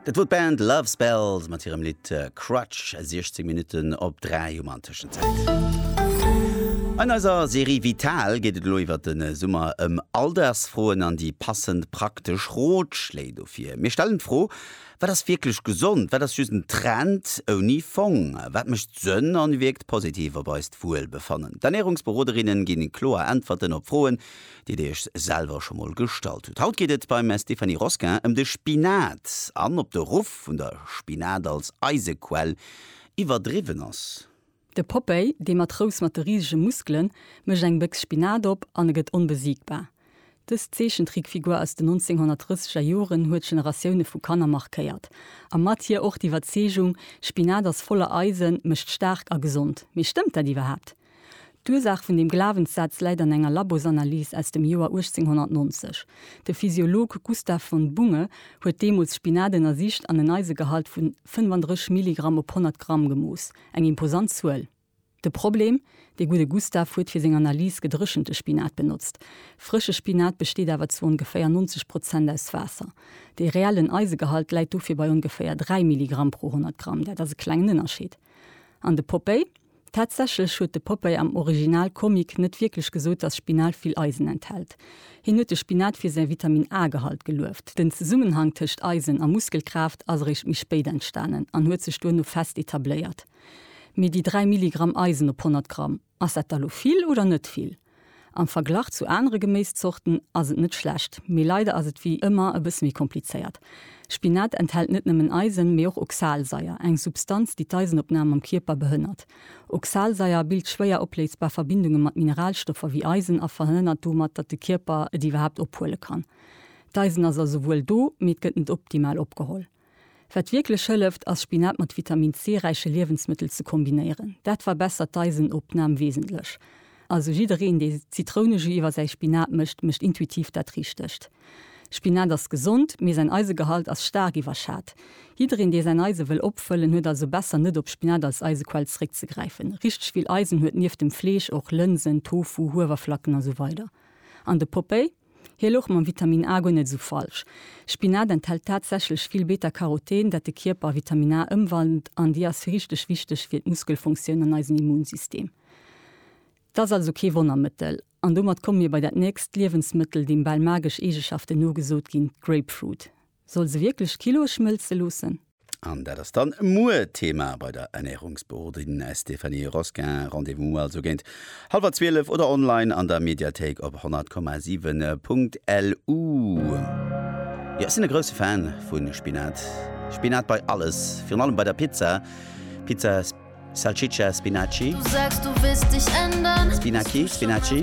Dat wor d'Band Love Spells mat hirem Lidd Crutch, 16 Minutten op 3 um an Tëschenzäit. An eiser Serie Vital geet et elo iwwer den Summer ëm Alldagsfroen an déi passend praktesch Rotschléi dofir. Mir stellen d'Fro, Wat ass wierklech gesond? Wat ass just en Trend ouni Fong? Wat mécht Sënn an wierkt positiv op eist Wuelbefannen? D'Ernärungsberoderinnen ginn kloer Äntwerten op Froen, déi Dir Iech selwer scho mol gestallt hutt. Haut geet et beim Stéphanie Rosquin ëm de Spinat an ob de Ruff vun der Spinat als Eisequell iwwerdriwwen ass. De Popeye, dee Matrous mat de risege Muskelen, mécht eng Béchs Spinat op an e gëtt onbesiegbar. Dës Zeechentrickfigur aus den 1930 er Joren huet Generatioune vu Kanner markéiert a mat hir och d'Iwwerzeegung, Spinat ass voller Eisen, mécht staark a gesond. Mee stëmmt dat iwwerhaapt? D'Ursaach vun deem Glawenssaz läit an enger Labosanalys aus dem Joer 1890. De Physiolog Gustav von Bunge huet deemools Spinat ënnersicht an en Eisegehalt vu 35 Milligramm op 100 Gramm gemooss, eng imposant Zuel. De Problem, De gudde Gustav huet fir seng Analys gedréchente Spinat benotzt. Frësche Spinat besteet awer zu ongeféier 90 Prozent aus Waasser. De reellen Eisegehalt läit dofir bei ongeféier 3 Milligramm pro 100 Gramm, dat ass e klengen Ënnerscheed. An de Popeye? Tatsächlech huet de Popeye am Original Comic net wierklech gesot, dass Spinat vill Eisen enthält. Hien huet de Spinat fir säi Vitamin A-Gehalt gelueft. Den Zesummenhang tëscht Eisen a Muskelkraaft ass eréischt méi spéit entstanen an huet sech duerno fest etabléiert. Mee déi 3 Milligramm Eisen op 100 Gramm, ass dat da lo vill oder net vill? Am Verglach zu anere Geméiszorten ass et net schlecht, mee leider ass et wéi ëmmer e bësse méi komplizéiert. Spinat enthält net nëmmen Eisen, mee och Oxalsaier, eng Substanz, déi d'Eisenopnam am Kierper behënnert. Oxalsaier bilt schwéier opléisbar Verbindunge mat Mineralstoffer wéi Eisen a verhënnert domat, datt de Kierper et iwwerhaapt ophuele kann. D'Eisen ass also wuel do, mee et gëtt net optimal opgeholl. Wat wierklech hëlleft, ass Spinat mat Vitamin C räiche Liewensmëttel ze kombinéieren. Dat verbessert d'Eisenopnam wesentlech. Also jiddereen, dee Zitrounejus iwwer säi Spinat mécht, mécht intuitiv dat Richtegt. Spinat ass gesond, mee säin Eisegehalt ass staark iwwerschat. Jiddereen, dee säin Eise wëll opfëllen, huet also besser net op Spinat als Eisequell zeréckzegräifen. Richteg vill Eisen huet nieft dem Fleesch och Lënsen, Tofu, Huewerflacken a sou weider. An de Popeye? Hie louch mam Vitamin A guer net esou falsch. Spinat enthält tatsächlech vill Beta-Caroten, dat de Kierper a Vitamin A ëmwandelt an déi ass richteg wichteg fir d'Muskelfunktioun an eisen Immunsystem. Et ass also kee Wonnermëttel. An domat komme mir bei dat nächst Liewensmëttel, deem bal magesch Eegeschaften nogesot ginn, d'Grapefruit. Soll se wierklech Kilo schmëlze loossen? An dat ass dann muer Thema bei der Ernärungsberoderin Stéphanie Rosquin. Rendez-vous also géint hallwer 12 oder online an der Mediathéik op 100,7.lu. Jo, ech sinn e grousse Fan vu Spinat. Spinat bei alles, virun allem bei der Pizza, Pizza Salsiccia Spinaci, Spinaci, Spinaci.